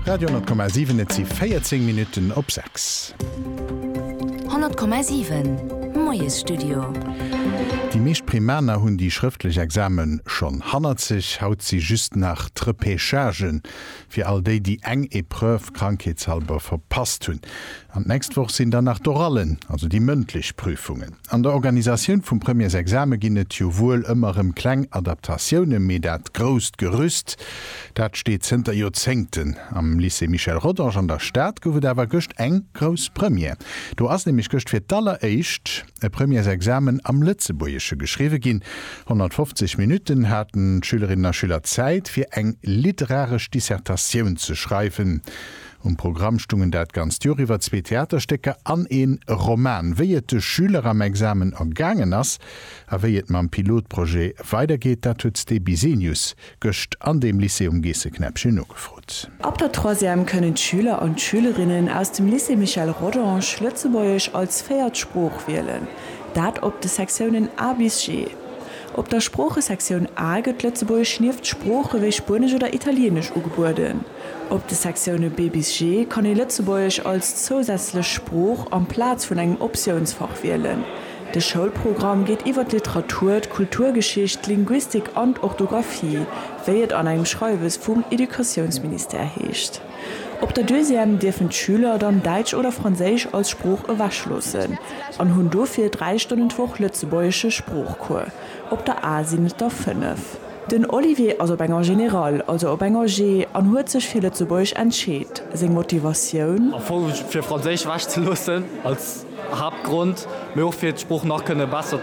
Radio,7 Et si 14 Minutten op 6. 100,7 Moiesstudio. Déi meescht Primaner hunn déi schrëftlech Exame schonn hannert sech. Haut si just nach d'Repechagë fir all déi, déi eng Epreuve krankheetshalber verpasst hunn. An d'nächst Woch sinn dann nach d'Orallen, also déi mëndlech Prüfungen. An der Organisatioun vum Premièresexame ginn et jo wuel ëmmer rëm kleng Adaptatiounen, mee dat grousst Gerüst, dat steet zënter Joerzéngten. Am Lycée Michel Rodange an der Stad gouf et awer gëscht eng grouss Première. Do ass nämlech gëscht fir d'alleréischt e Premièresexamen am Lëtzebuergesche geschriwwe ginn. 150 Minutten haten d'Schülerinnen a Schüler Zäit, fir eng literaresch Dissertatioun ze schreiwen. Um Programm stungen dat ganzt Joer iwwer zwee Theaterstécker an een Roman. Wéi et de Schüler am Examen ergaangen ass a wéi et mam Pilotprojet weidergeet, dat huet d'Stebi Zenius gëscht an deem Lycée um Geesseknäppchen nogefrot. Ab der Troisième kënnen d'Schüler an d'Schülerinnen aus dem Lycée Michel Rodange Lëtzebuergesch als véiert Sprooch wielen, dat op de Sektiounen A bis G. Op der Sproochesektioun A gëtt Lëtzebuergesch nieft Sprooche wéi Spuenesch oder Italieenesch ugebueden. Op de Sektioune B bis G kann ee Lëtzebuergesch als zousätzlech Sprooch amplaz vun engem Optiounsfach wielen. De Schoulprogramm geet iwwer d'Literatur, d'Kulturgeschicht, d'Linguistik an d'Orthografie, wéi et an engem Schreiwes vum Educatiounsministère heescht. Op der Deuxième dierfen d'Schüler dann Däitsch oder Franséisch als Sprooch ewechloossen an hunn dofir dräi Stonnen d'Woch lëtzebuergesche Sproochcours, op der A sinn et der fënnef. Den Olivier ass op enger Générale, also op enger G, an huet sech fir Lëtzebuergesch entscheet. Seng Motivatioun? Am Fong fir Franséisch ewech ze loossen als Haaptgrond, mee och fir d'Sprooch nach kënne besser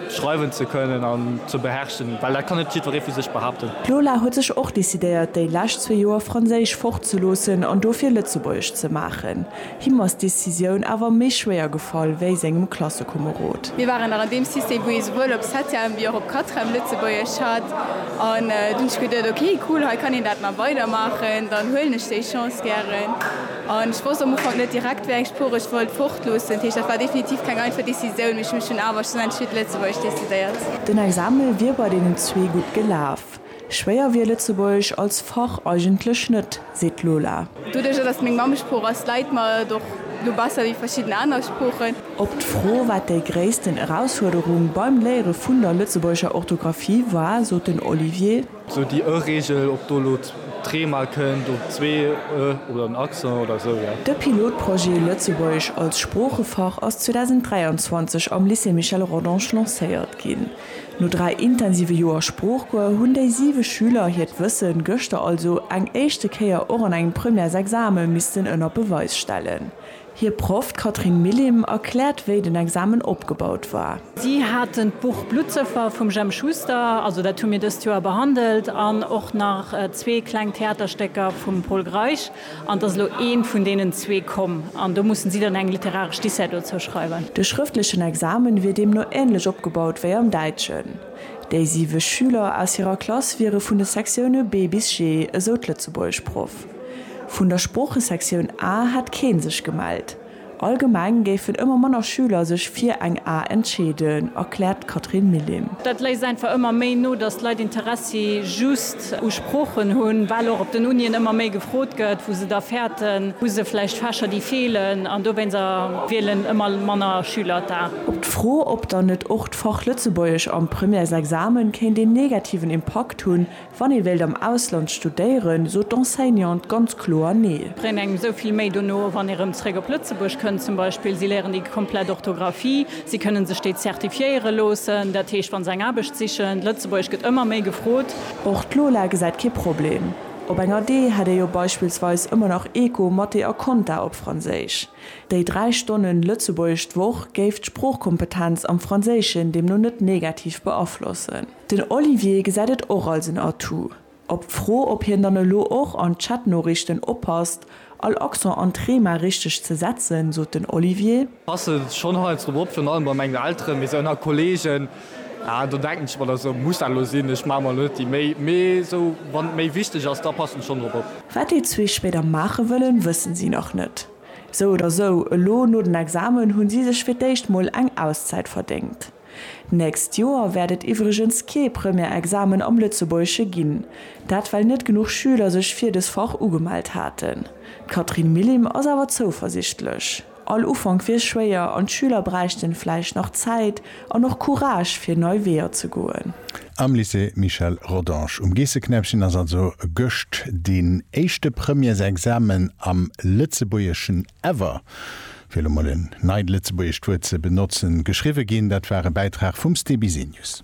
schreiwen ze kënnen an ze beherrschen, well dat kann net jiddweree vu sech behaapten. D'Lola huet sech och decidéiert, déi lescht zwee Joer Franséisch fortzeloossen an dofir Lëtzebuergesch ze maachen. Him ass d'Decisioun awer méi schwéier gefall wéi sengem Klassekomerod. Mir waren nach an deem System, wou ee souwuel op Septième wéi och op Quatrième Lëtzebuergesch hat. An dunn hunn ech geduet, ok cool, hei kann een dat nach weidermaachen, dann huelen ech déi Chance gären. An ech wosst am Ufank net direkt, wéi eng Sprooch ech wollt fortloossen. Dat heescht, dat war definitiv keng einfach Decisioun, mee ech hu mech dunn awer schlussendlech fir d'Lëtzebuergesch decidéiert. Den Exame wier bei deenen zwee gutt gelaf. Schwéier wier Lëtzebuergesch als Fach eigentlech net, seet d'Lola. Doduerjer, datt et meng Mammesprooch ass, läit mer et och elo besser wéi verschidden aner Sproochen. Op d'Fro, wat déi gréissten Erausfuerderung beim Léiere vun der lëtzebuergescher Orthografie war, sot den Olivier. Sou déi ë Reegel, ob do elo d'ree mol kënnt, oder zwee ë oder en Accent oder esou, jo. De Pilotprojet Lëtzebuergesch als Sproochefach ass 2023 am Lycée Michel Rodange lancéiert ginn. No dräi intensive Joer Sproochcours hunn déi siwe Schüler hiert Wësse gëschter also eng éischte Kéier och an engem Premièresexame missten ënner Beweis stellen. Hir Proff, d'Catherine Millim, erkläert, wéi den Examen opgebaut war. Si haten d'Buch Bluttsëffer vum Jemp Schuster, also dat hu mir dëst Joer behandelt, an och nach zwee kleng Theaterstécker vum Pol Greisch. An et ass elo eent vun deenen zwee komm, an do mussen si dann eng literaresch Dissert dozou schreiwen. De schrëftlechen Examen wier deemno ähnlech opgebaut wéi am Däitschen. Déi siwe Schüler aus hirer Klass wiere vun de Sektioune B bis G, esou d'Lëtzebuergeschproff. Vun der Sproochesektioun A hätt kee sech gemellt. Allgemeng géifen ëmmer manner Schüler sech fir eng A entscheeden, erkläert d'Catherine Millim. Dat léisst einfach ëmmer méi no, datt d'Leit Interessi just u Sproochen hunn, well och op den Unien ëmmer méi gefrot gëtt, wou se da fäerten. Hu se vläicht Fächer, déi feelen? An dowéinst wielen ëmmer manner Schüler d'A. Op d'Fro, ob dann net och d'Fach Lëtzebuergesch am Premièresexamen kéint een negativen Impakt hunn, Wann ee wéilt am Ausland studéieren, sot d'Enseignante ganz kloer Nee. Bréngt engem esou vill méi dono, wann ee rëm zréck op Lëtzebuerg kënnt zum Beispill. Si léieren déi komplett Orthografie, si kënnen sech déi zertifiéiere loossen, dat heescht wa se eng Aarbecht sichen. Lëtzebuergesch gëtt ëmmer méi gefrot. Och d'Lola gesäit kee Problem. Op enger Dee hätt ee jo beispillsweis ëmmer nach Eco, Mathé a Konta op Franséisch. Déi dräi Stonne Lëtzebuergesch d'Woch géif d'Sproochkompetenz am Franséischen deemno net negativ beaflossen. Den Olivier gesäit et och als en Atout. Op d'Fro, ob hien dann elo och an Chatnoriichten oppasst, all Accent an d'Thema richteg ze setzen, sot den Olivier. Passe schonn heiansdo op, virun allem bei mengen Elteren, mee esou ënner Kolleegen, ah do denken ech mer da sou, muss dat elo sinn, ech maache mer elo net déi Méi. Mee esou wann et méi wichteg ass, da passen ech schonn drop op. Wat déi zwee spéider maache wëllen, wëssen si nach net. Sou oder sou, elo no den Examen hunn si sech fir d'éischt mol eng Auszäit verdéngt. D'nächst Joer wäert et iwwregens kee Première-Examen am Lëtzebuergesche ginn, dat well net genuch Schüler sech fir des Fach ugemellt haten. D'Catherine Millim ass awer zouversichtlech. All Ufank wier schwéier an d'Schüler bräichten vläicht nach Zäit an och Courage fir nei Weeër ze goen. Am Lycée Michel Rodange um Geesseknäppchen ass also gëscht deen éischte Premièresexamen am Lëtzebuergeschen ever. fir elo mol en neit lëtzebuergescht Wuert ze benotzen, geschriwwe ginn. Dat war e Bäitrag vum Ste Bisenius.